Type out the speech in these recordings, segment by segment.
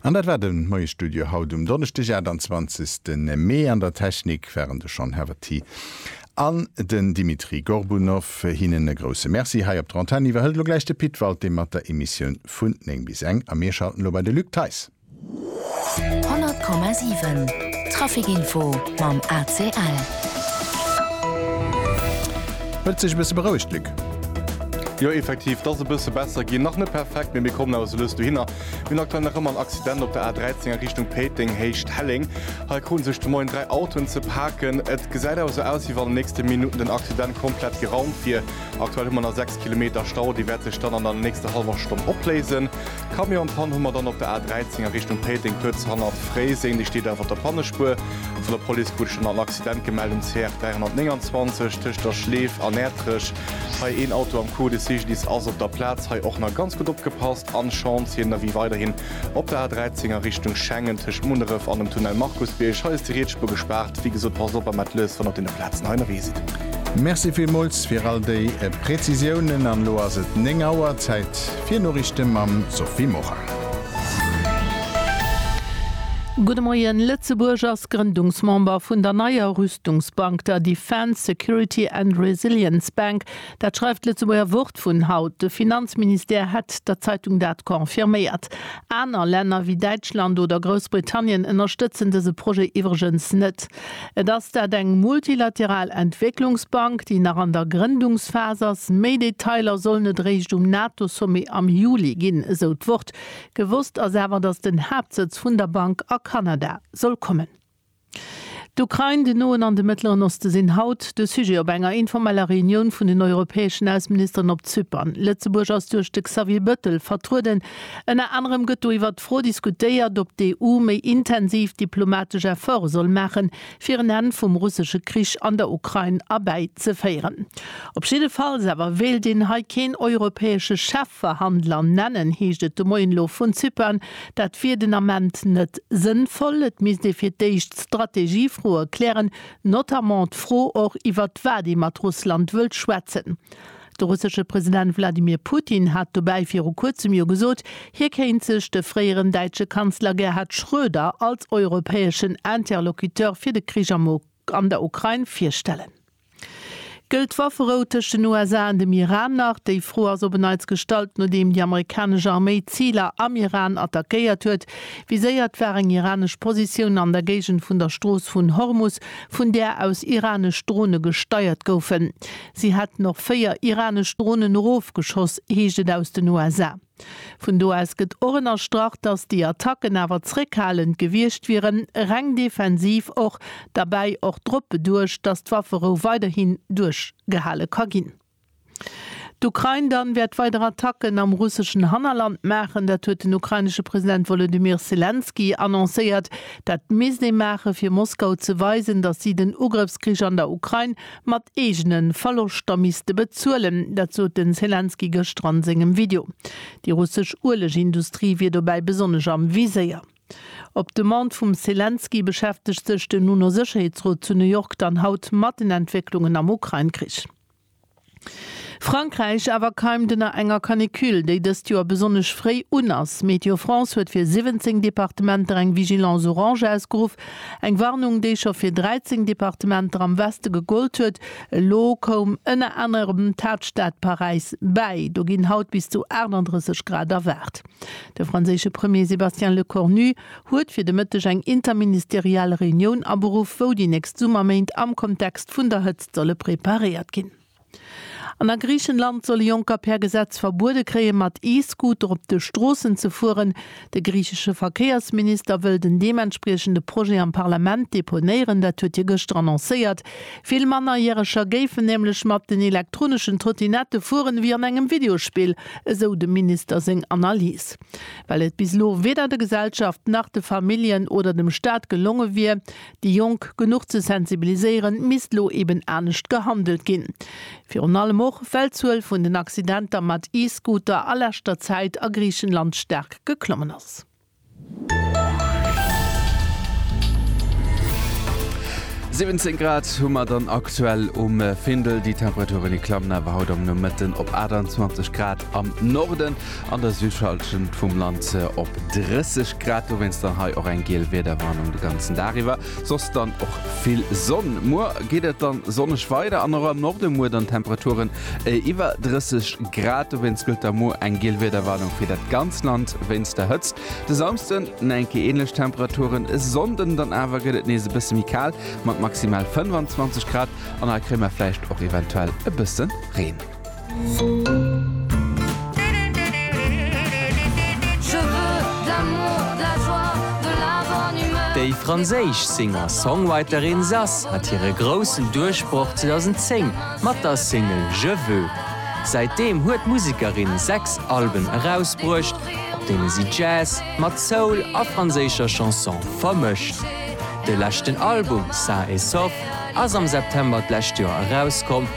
An dat war de Moie Studio haut um Donneschdeg 28 Mee. An der Technik waren de Sean Haverty an den Dimitri Gorbunov. Hinnen e grousse Merci. Hei op der Antenn iwwerhëlt elo gläich de Pit Walté mat der Emissioun vun 9 bis eng a mir schalten elo bei de Luc Theis. 100,7 Trafic Info mam ACL. Huet sech e bësse berouegt, Luc? Jo, effektiv, et ass e bësse besser ginn. Nach net perfekt, mee mir kommen awer sou lues dohinner. Mir hunn aktuell nach ëmmer en Accident op der A13 a Richtung Péiteng, Héicht Helleng. Hei kruten sech de Moien dräi Autoen ze paken. Et gesäit awer sou aus, wéi wann an den nächste Minutten den Accident komplett geraumt wier. Aktuell hu mer nach 6 Kilometer Stau, dee wäert sech dann an der nächster hallwer Stonn opléisen. D'Camionspann hu mer dann op der A13 a Richtung Péiteng, kuerz hannert Fréiseng. Déi steet awer op der Pannespuer. Vun der Police krut ech dann nach en Accident gemellt um CR 329 tëscht der Schleef an Ärtrech. Hei een Auto am Coup. De Cyclist ass op der Plaz. Hei och nach ganz gutt opgepasst an Chance. Hien ënnerwee weiderhin op der A13 a Richtung Schengen tëscht Munneref an dem Tunnel Markusbierg. Hei ass déi Rietsspuer gespaart. Wéi gesot, passt op am Atleus, wann der op deene Plazen hei ënnerwee sidd. Merci villmools fir all déi Prezisiounen. An elo ass et 9 Auer, Zäit Fir Noriichte mam Sophie Morang. Gudde Moien, Lëtzebuerg ass Grëndungsmember vun der neier Rüstungsbank, der Defence, Security and Resilience Bank. Dat schreift d'Lëtzebuerger Wort vun haut. De Finanzministère hätt der Zeitung dat confirméiert. Aner Länner wéi Däitschland oder Groussbritannien ënnerstëtzen dëse Projet iwwregens net. Et ass dat eng multilateral Entwécklungsbank, déi nach an der Grëndungsphas ass. Méi Detailer sollen et réischt um NATO-Sommet am Juli ginn, esou d'Wort. Gewosst ass awer, datt den Haaptsëtz vun der Bank a Kanada soll kommen. D'Ukrain, den Noen an de Mëttleren Oste sinn haut de Sujet op enger informeller Reunioun vun den europäeschen Ausseministeren op Zypern. Lëtzebuerg ass duerch de Xavier Bëttel vertrueden. Ënner anerem gëtt do iwwert d'Fro diskutéiert, ob d'EU méi intensiv diplomatesch Efforte soll maachen, fir en Enn vum russesche Krich an der Ukrain erbäizeféieren. Op jidde Falls awer wéilt een hei keen europäesche Chefverhandler nennen, heescht et de Moien elo vun Zypern. Dat wier den Ament net sënnvoll. Et misst ee fir d'éischt Strategiefroe klären, notamment d'Fro och, iwwert wat ee mat Russland wëllt schwätzen. De russesche President Wladimir Putin hat dobäi viru kuerzem jo gesot, hie kéint sech de fréieren däitsche Kanzler Gerhard Schröder als europäeschen Interlocuteur fir de Krich am an der Ukrain virstellen. Gëllt d'Wafferou tëscht den USA an dem Iran nach? Déi Fro ass op en Neits gestallt, nodeem déi amerikanesch Arméi Ziler am Iran attackéiert huet. Viséiert war eng iranesch Positioun an der Géigend vun der Strooss vun Hormus, vun där aus iranesch Drone gesteiert goufen. Si hätten och véier iranesch Dronen erofgeschoss, heescht et aus den USA. Vun do aus gëtt och ënnerstrach, datt déi Attacken awer zréckhalend gewiescht wieren, reng defensiv och, derbäi och drop beduecht, datt d'Wafferou weiderhin duerchgehale ka ginn. D'Ukrain dann wäert weider Attacken am russeschen Hannerland maachen, dat huet den ukrainesche President Wolodymyr Selenskyj annoncéiert. Dat misst ee maachen, fir Moskau ze weisen, datt si den Ugrëffskrich an der Ukrain mat eegene Verloschter misste bezuelen. Dat sot de Selenskyj gëschter a sengem Video. Déi russesch Uelegindustrie wier dobäi besonnesch am Viséier. Op Demande vum Selenskyj beschäftegt sech den UNO-Sécherheetsrot zu New York dann haut mat den Entwécklungen am Ukrain-Krich. Frankräich awer keimt ënner enger Canicule, déi dëst Joer besonnesch fréi un ass. Météo France huet fir 17 Departementer eng Vigilance orange ausgeruff. Eng Warnung, déi scho fir 13 Departementer am Weste gegollt huet. Elo koum ënner anerem d'Haaptstad Paräis bäi. Do ginn haut bis zu 38 Grad erwaart. De franséische Premier Sébastien Lecornu huet fir de Mëtteg eng interministeriell Reunioun aberuff, wou déi nächst Summerméint am Kontext vun der Hëtzt solle preparéiert ginn. An a Griichenland soll e Jonker per Gesetz verbuede kréien, mat E-Scooter op de Stroossen ze fueren. De griichesche Verkéiersminister wëll den deementspriechende Projet am Parlament deponéieren, dat huet hie gëschter annoncéiert. Vill Mannerjäreger géifen nämlech mat den elektroneschen Trottinette fueren, ewéi an engem Videospill, esou dem Minister seng Analys. Well et bis elo weder der Gesellschaft nach de Familljen oder dem Staat gelonge wier, Déi Jonk genuch ze sensibiliséieren, misst lo eben anescht gehandelt ginn. Virun allem och, well d'Zuel vun den Accidenter mat E-Scooter a leschter Zäit a Griichenland staark geklommen ass. Siwwenzéng Grad hu mer dann aktuell um Findel. Déi Temperaturen, déi klammen awer haut am Nomëtten op 28 Grad am Norden. An der Südhallschent vum Land op 30 Grad, dowéinst dann hei och eng giel Wiederwarnung de ganzen Dag iwwer, soss dann och vill Sonn. Muer geet et dann sonneg weider an och am Norde muer dann Temperaturen iwwer 30 Grad, dowéinst gëllt da muer eng giel Wiederwarnung fir dat ganzt Land wéinst der Hëtzt. De Samsden dann eng Kéier änlech Temperaturen, e Sonnden dann awer gëtt et nees e bësse méi kal mat maximal 25 Grad an hei kréie mer vläicht och eventuell e bësse Reen. Déi franséisch Singer-Songwriterin Zaz hat hire groussen Duerchbroch 2010 mat der Single Je veux. Säitdeem huet d'Musekerin sechs Alben erausbruecht, op deene si Jazz mat Soul a franséischer Chanson vermëscht. De leschten Album Sain et Sauf ass am September d'lescht Joer erauskomm.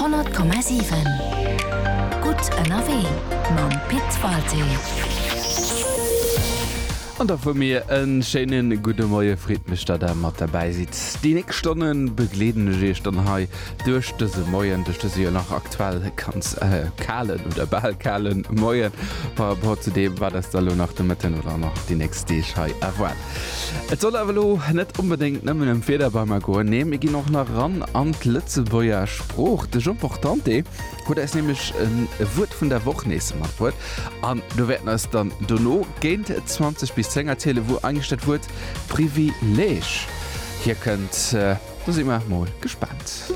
Honnert Komma siwen Gutt ënnerwee mam Pit Walté. An da vu mir e schéine gudde Moie. Freet mech, datt der mat derbäi sidd. Déi nächst Stonne begleeden ech iech dann hei duerch dëse Moien, duerch dëse jo nach aktuell ganz kalen oder bal kale Moien par rapport zu deem, wat eis da elo nach de Mëtten oder nach déi nächst Deeg hei erwaart. Et soll awer elo net onbedéngt nëmmen ëm Federbeimer goen, nee mir ginn och nach eran an d'Lëtzebuerger Sprooch. De Jean Portante huet eis nämlech e Wuert vun der Woch nees matbruet an do wäerten eis dann dono géint 20 bis 10 erzielen, wou eigentlech dat Wuert Privileeg hierkënnt. Do si mer mol gespaant.